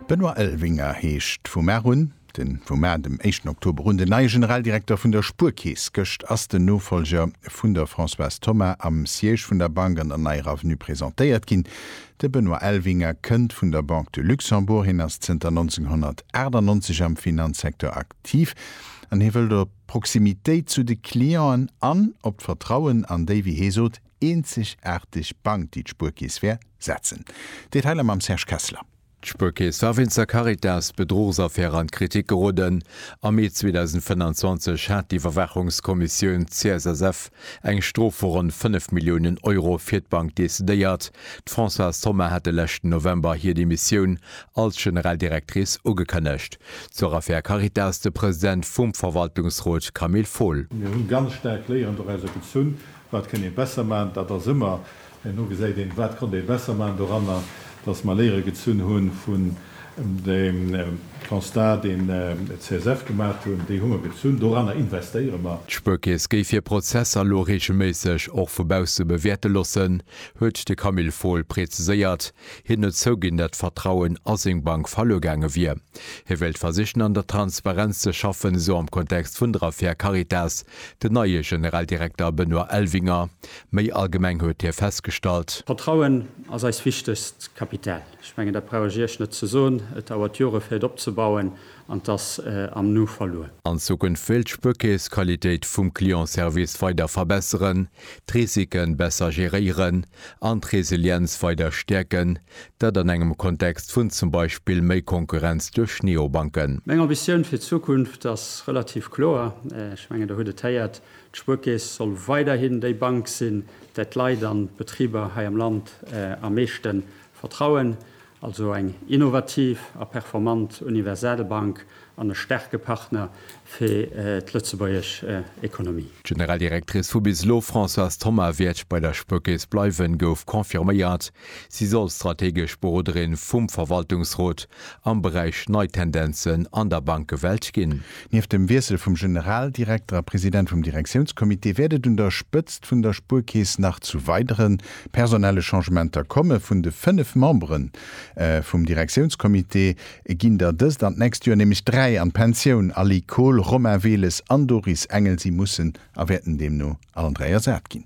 Benoît Elvinger heescht vu mar un, de vu mar dem éischten Oktober un, den neie Generaldirekter vun der Spuerkeess. Gëscht ass den Nofollger vun der Françoise Thomas am Siège vun der Bank an der neier Avenue presentéiert ginn. De Benoît Elvinger kënnt vun der Banque de Luxembourg, hien ass zënter 1998 am Finanzsecteur aktiv an hie wëllt op d'Proximitéit zu de Clienten an op d'Vertrauen an déi, wéi hie sot, eenzegaarteg Bank, déi d'Spuerkeess wär, setzen. Detailer mam Serge Kessler. D'Spuerkeess war wéinst der Caritas-Bedruchsaffär an d'Kritik geroden. Am Mee 2025 hat d'Iwwerwaachungskommissioun CSSF eng Strof vu ronn 5 Milliounen Euro fir d'Bank decidéiert. D'Françoise Thoma hat de leschten November hir Demissioun als General Directrice ugekënnegt. Zur Affär Caritas de President vum Verwaltungsrot Camille Fohl. Mir hunn ganz staark Léieren doraus gezunn, Wat kënn ee besser maachen? Dat ass ëmmer, herno gesäit een, wat konnt ee besser maachen doranner, datt mer Léiere gezunn hu vun deem Constat, deen d'CSF gemaacht hunn. Déi hu mer gezunn, doranner investéiere mer. D'Spuerkeess géif hir Prozesser elo reegelméisseg och vu bausse bewäerte lossen, huet de Camille Fohl preziséiert. Hien huet zouginn, datt d'Vertrauen a seng Bank verluer gaange wier. Hie wéilt versichen, an der Transparenz ze schaffen, esou am Kontext vun der Affär Caritas, Den neie Generaldirekter Benoît Elvinger. Méi allgemeng huet hie festgestallt. Vertrauen ass eis wichtegst Kapital. Ech mengen, dat brauch ech Iech net ze soen. Et dauert Jore fir et opzebauen an et ass am Nu verluer. An Zukunft wéilt d'Spuerkeess d'Qualitéit vum Clientservice weider verbesseren, d'Risiken besser geréieren an d'Resilienz weider stäerken, Dat an engem Kontext vun zum Beispill méi Konkurrenz duerch Neobanken. Meng Ambitioun fir d'Zukunft ass relativ kloer. Ech mengen, Der hutt et héiert, D'Spuerkeess soll weiderhin déi Bank sinn, där d'Leit an d'Betriber hei am Land am meeschte vertrauen. Also eng innovativ a performant universell Bank An e staarke Partner fir d'lëtzebuergesch Ekonomie. D'Generaldirectrice vu bis elo, Françoise Thoma, wäert bei der Spuerkeess bleiwen, gouf confirméiert. Si soll strategesch Beroderin vum Verwaltungsrot am Beräich nei Tendenzen an der Bankewelt ginn. Nieft dem Wiessel vum Generaldirekter a President vum Direktiounscomité wäert et un der Spëtzt vun der Spuerkeess nach zu weidere personelle Changementer komme. Vun de fënnef Membere vum Direktiounscomité Et ginn der dëst an d'nächst Joer nämlech dräi an d'Pensioun, Aly Kohll, Romain Weles an Doris Engel. Si mussen a wäerten deemno allen dräi ersat ginn.